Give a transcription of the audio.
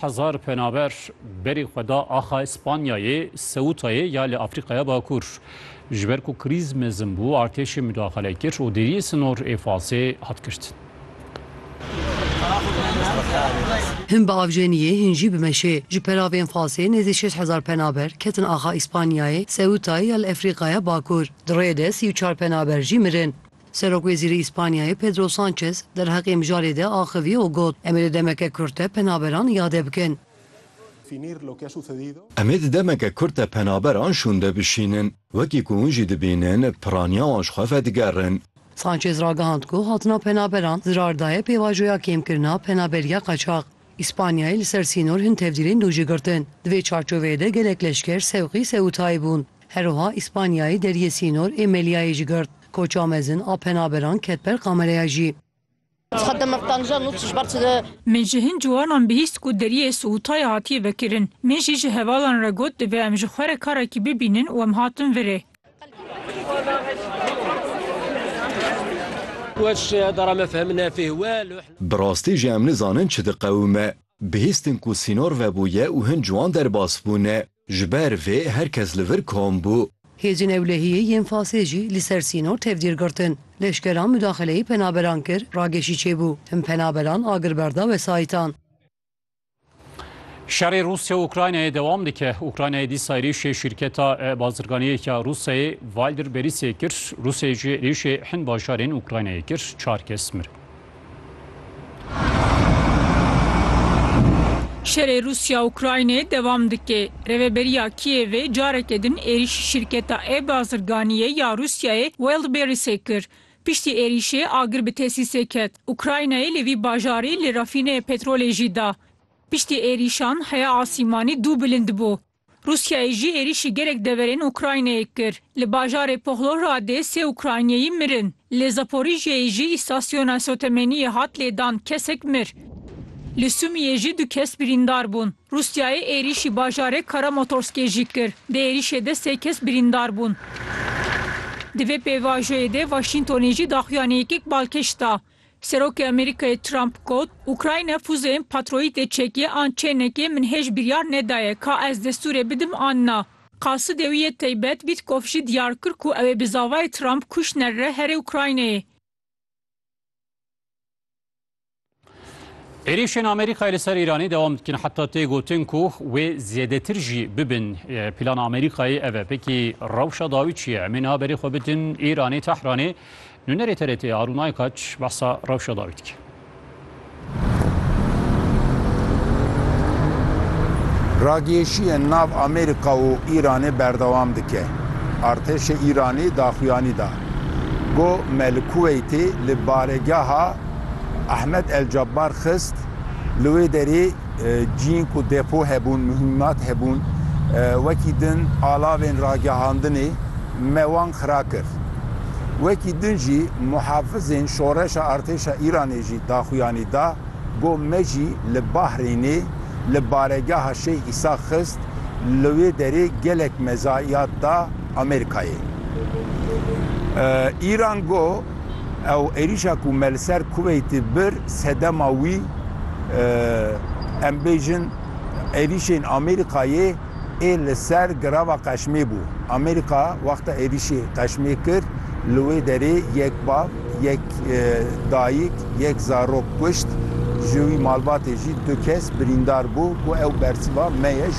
Hezar penaber berê xwe da axa Spanyayê, Seûtayê ya li Afrîkaya Bakur. Ji ber ku krîz mezin bû, artêşê mudaxale kir û deriyê sinor ê Fasê hat girtin. Hin bi avjeniyê, hin jî bi meşê. Ji peravên Fasê nêzî şeş hezar penaber ketin axa Spanyayê, Seûtayê ya li Efrîkaya Bakur. Di rêyê de sî û çar penaber jî mirin. Serokwezîrê Îspanyayê Pedro Sanchez derheqê mijarê de axivî û got, Em ê di demeke kurt de penaberan îade bikin. Em ê di demeke kurt de penaberan şûnde bişînin. Wekî ku hûn jî dibînin, piraniya wan ji xwe vedigerin. Sanchez ragihand ku hatina penaberan zirar daye pêvajoya kêmkirina penaberiya qaçax. Îspanyayê li ser sînor hin tevdîrên dû jî girtin. Di vê çarçoveyê de gelek leşker sewqî Seûtayê bûn. Her wiha Îspanyayê deriyê sînor ê Meliayê jî girt. Koça mezin a penaberan ket ber kamereya jî. Min ji hin ciwanan bihîst ku deriyê Siûtayê hatiye vekirin. Min jî ji hevalan re got divê em ji xwe re karekî bibînin û em hatin vir ê. Bi rastî jî em nizanin çi diqewime. Bihîstin ku sînor vebûye û hin ciwan derbas bûne. Ji ber vê her kes li vir kom bû. Hêzên ewlehiyê yên Fasê jî li ser sînor tevdîr girtin. Leşkeran mudaxileyê penaberan kir, rageşî çêbû. Hin penaberan agirber da wesayîtan. Şerê Rûsya û Ukraynayê dewam dike. Ukraynayê dîsa êrîşê şîrketa bazirganiyê ya Rûsyayê Wildberries-ê kir. Rûsyayê jî êrîşê hin bajarên Ukraynayê kir, çar kes mirin. Şerê Rûsya-Ukraynê dewam dike. Rêveberiya Kîevê careke din êrîşî şîrketa e-bazirganiyê ya Rûsyayê Wildberries-ê kir. Piştî êrîşê agir bi tesîsê ket Ukraynayê li vî bajarî li refîneyê petrolê jî da. Piştî êrîşan heya asîmanî dû bilind bû. Rûsyayê jî êrîşî gelek deverên Ukraynayê kir. Li bajarê Pohlohradê sê Ukrayniyeyî mirin. Li Zaporijyeyê jî îstasyona sotemeniyê hat lêdan, kesek mir. Li Sumiyê jî du kes birîndar bûn. Rûsyayê êrîşî bajarê Karamotorskê jî kir. Di êrîşê de sê kes birîndar bûn. Di vê pêvajoyê de Waşîntonê jî daxuyaniyekek balkêş da. Serokê Amerîkayê Trump got, Ukrayna fuzeyên patroyîtê çekê an çê nekê min hêj biryar nedaye ka ez destûrê bidim an na. Qasidê wî yê teybet Wîtkov jî diyar kir ku ew ê bi zavayê Trump Kuşner re herê Ukraynayê. Êrîşên Amerîkayê li ser Îranê dewam dikin heta tê gotin ku wê zêdetir jî bibin. Plana Amerîkayê ev e. Pekî rewşa dawî çi ye? Em ê niha berê xwe bidin Îranê, Tehranê. Nûnerê TRT'ê Arûn Aykaç behsa rewşa dawî dike. Ragihêşiyên nav Amerîka û Îranê berdewam dike. Artêşê Îranî daxuyanî da ku me li Kuweytê li baregeha Ehmed El Cebar xist, li wê derê Cihên ku depo hebûn, muhîmat hebûn, wekî din alavên ragihandinê me wan xira kir. Wekî din jî muhafizên şoreşa artêşa Îranê jî daxuyanî da ku me jî li Bahrênê li baregeha Şeyh Îsa xist, li wê derê gelek mezayiyat da Amerîkayê. Îran got. Ew êrîşa ku me li ser Kuweîtê bir sedema wî em bêjin êrîşên Amerîkayê ê li ser girava Qeşmê bû. Amerîka wexta êrîşê Qeşmê kir li wê derê yek bav, yek dayik, yek zarok kuşt, ji wî malbatê jî du kes birîndar bû ku ew bersiva me ye.